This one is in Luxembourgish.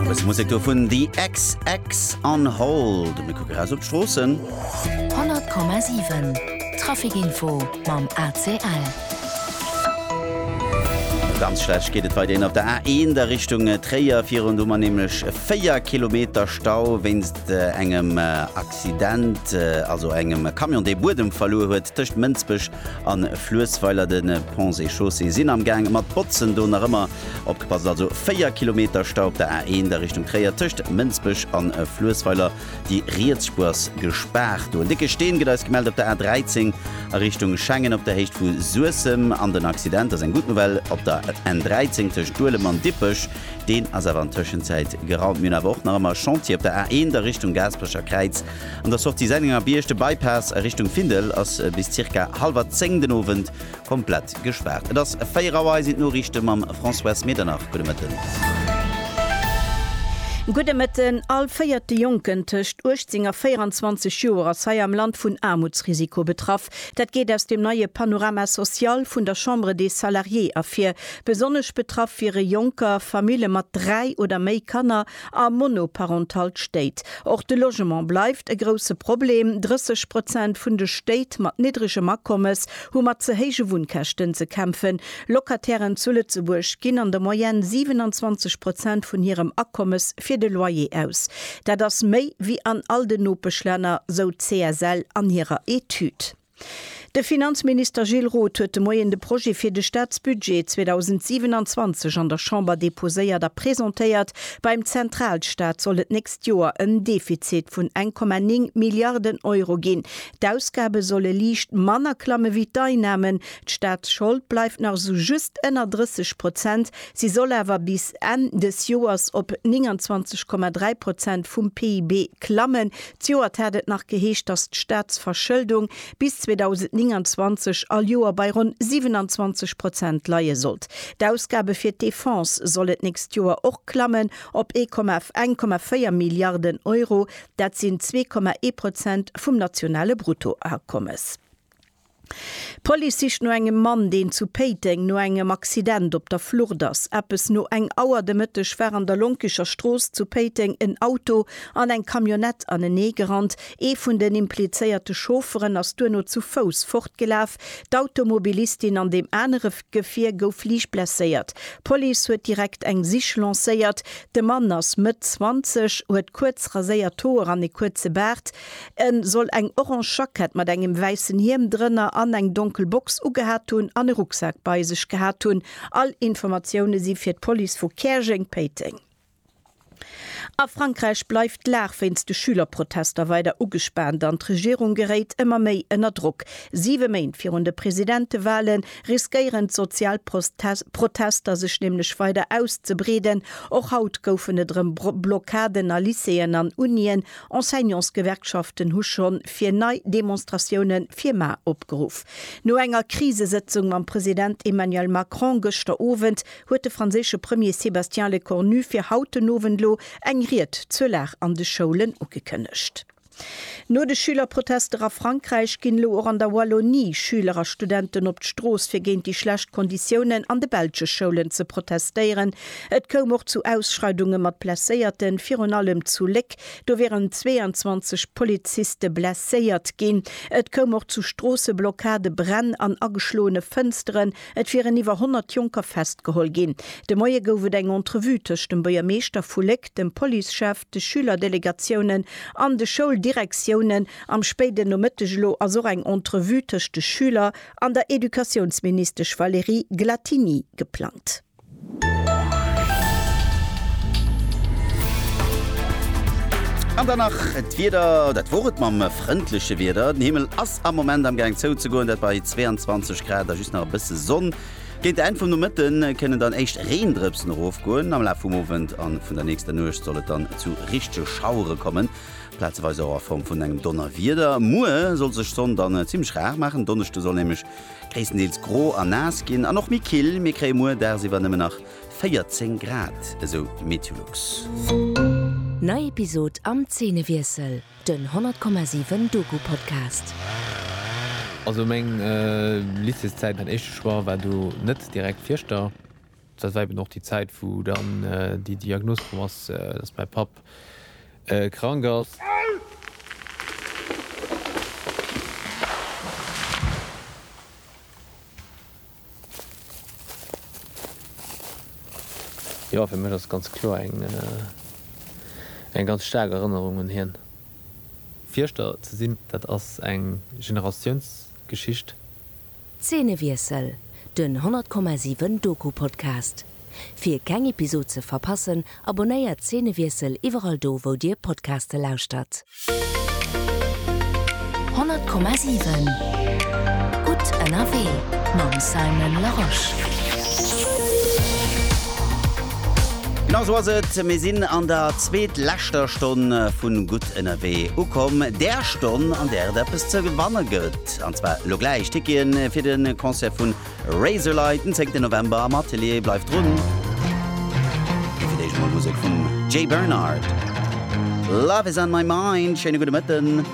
Bës Musek do vun The XX on Hold. Mir kucke ras op d'Stroossen. 100,7 Trafikinfo mam ACL. Ganz schlecht geet et wei deen op der A1 der Richtung äh, Tréier virun du man nämlech 4 Kilometer Stau wéinst äh, engem äh, Accident, äh, also engem Kamion dee Buedem verloe huet tëcht Mënzbech an Fluesweiler den äh, Ponts et Chaussée sinn am Gang mat Botzen do nach ëmmer Opgepasst also, 4 Kilometer Stau op der A1 a Richtung Tréier tëscht Mënsbech an Fluessweiler, déi riets Spuer ass gespaart. Do en décke Steen, gëtt eis gemellt op der A13 a Richtung Schengen op der Héicht vu Suessem. An den Accident ass eng gutt Nouvelle op der N13 tëscht Duelem an Dippech, deen ass awer an Tëschenzäit geraumt. Mir hunn awer och nach ëmmer Chantier op der A1 a Richtung Gaasperecher Kräiz an der Sortie Sennengerbierg. De Bypass a Richtung Findel ass bis zirka hallwer 10 den Owend komplett gespaart. Et ass 4 Auer, hei sinn d'Noriichte mam Françoise Medernach. Gudde Mëtten. Gudde Mëtten. All véierte Jonken tëscht 18 a 24 Joer ass hei am Land vun Aarmutsrisiko betraff. Dat geet aus dem neie Panorama social vun der Chambre des Salariés ervir. Besonnesch betraff wiere Jonker, Famille mat dräi oder méi Kanner a monoparentalt Stéit. Och de Logement bleift e grousse Problem, 30 Prozent vun de Stéit mat niddregem Akommes hu mat ze héije Wunnkäschten ze kämpfen. Locatairen zu Lëtzebuerg ginn an der Moyenne 27 Prozent vun hirem Akommes fir de Loyer aus. Dat ass méi wéi an all den Nopeschlänner, sou d'CSL an hirer Etüd. De Finanzminister Gilles Roth huet de Moien de Projet fir de Staatsbudget 2027 an der Chamber deposéiert a presentéiert. Beim Zentralstaat soll et d'nächst Joer en Defizit vun 1,9 Milliarden Euro ginn. D'Ausgabe solle liicht manner klamme wéi d'Einnamen. D'Staatsschold bleift nach sou just ënner 30 Prozent, si soll awer bis Enn des Joers op 29,3 Prozent vum PIB klammen, Zejoert hat et nach geheescht, datt d'Staatsverschëldung bis 2029 all Joer bei ronn 27 Prozent leie sollt. D'Ausgabe fir d'Defense sollen d'nächst Joer och klammen op 1,4 Milliarden Euro, dat sinn 2,1 Prozent vum nationale Bruttoakommes. D'Police sicht no engem Mann, deen zu Péiteng no engem Accident op der Flucht ass. Eppes no eng Auer de Mëtteg war an der Lonkecher Strooss zu Péiteng en Auto an eng Camionnette anenee gerannt. Ee vun den implizéierte Chaufferen ass duerno zu Fouss fortgelaf. D'Automobilistin an deem anere Gefier gouf liicht blesséiert. D'Police huet direkt eng Sich lancéiert. De Mann ass Mëtt 20, huet kuerz raséiert Hoer an e kuerze Baart. En soll eng orange Jackett mat engem wäissen Hiem drënner an eng donkel Box ugehat hunn an e Rucksak bei sech gehat hunn. All Informatioune si fir d'Police vu Käerjeng-Péiteng. A Frankräich bleift d'Lag wéinst de Schülerprotester weider ugespaant an d'Regierung geréit ëmmer méi ënner Drock. Siwe Méint virun de Presidentewale riskéieren d'sozial Protester sech nämlech weider auszebreeden. Och haut goufen et erëm Blockaden a Lycéeën an Unien. Enseignantsgewerkschaften hu schonn fir nei Demonstratioune fir mar opgeruff. No enger Krisesëtzung mam President Emmanuel Macron gëschter Owend huet de franséische Premier Sébastien Lecornu fir haut den Owend elo eng Ried zur Lag an de Schoulen ugekënnegt. No de Schülerprotester a Frankräich ginn elo och an der Wallonie Schüler a Studenten op d'Strooss fir géint déi schlecht Konditiounen an de belsche Schoulen ze protestéieren, Et koum och zu Ausschreidunge mat Blesséierten, virun allem zu Léck. Do wieren 22 Poliziste blesséiert ginn. Et koum och zu Stroosseblockade, Bränn an ageschloene Fënsteren. Et wieren iwwer 100 Jonker festgeholl ginn. De Moie gouf et eng Entrevue tëscht dem Buergermeeschter vu Léck, dem Policechef, de Schülerdelegatioune an de Schouldirektiounen. Am spéiden Nomëtteg elo ass och eng Entrevue tëscht de Schüler an der Educatiounsministesch Valérie Glattini geplangt. An dann nach d'Wieder, dat wor et mam frëndleche Wieder. Den Himmel ass am Moment am Gaang zouzegoen, dat bei 22 Grad a just nach e bësse Sonn. Géint d'Enn vum Nomëtte kënnen dann éischt Reendrëpsen erofgoen. Am Laf vum Owend a vun der nächster Nuecht soll et dann zu richtege Schauere kommen, plazeweis och a Form vun engem Donnerwieder. Muer soll sech d'Sonn dann zimmlech rar maachen, Donneschde soll nämlech Gréisstendeels gro a naass ginn an och méi kill. Mir kréie muer dagsiwwer nëmmen nach 14 Grad, esou Meteolux. Nei Episod am Zeenewiessel, den 100,7 Doku-Podcast. Also meng Lycéeszäit, mäin éischte Choix war do net direkt Fieschter. Dat war eben och déi Zäit, wou dann déi Diagnos komm ass, dass mäi Papp krank ass. Jo, fir mech ass ganz kloer eng ganz staark Erënnerung un hien. Fierschter ze sinn, dat ass eng Generatiounsgeschicht. Zeenewiessel, den 100,7 Doku-Podcast. Fir keng Episod ze verpassen, abonnéiert Zeenewiessel iwwerall do wou dir Podcaste lauschtert. 100,7 Gutt ënnerwee mam Simon Larosche. Genau sou ass et, mir sinn an der zweetleschter Stonn vun Gutt ënnerwee ukomm, där Stonn an där et eppes ze gewanne gëtt. An zwar elo gläich Ticketen fir de Concert vu Razorlight den 10 November am Atelier. Bleift drun! Mee fir d'éischt mol Musek vum Jay Bernard. Love is on my mind. Schéine gudde Mëtten.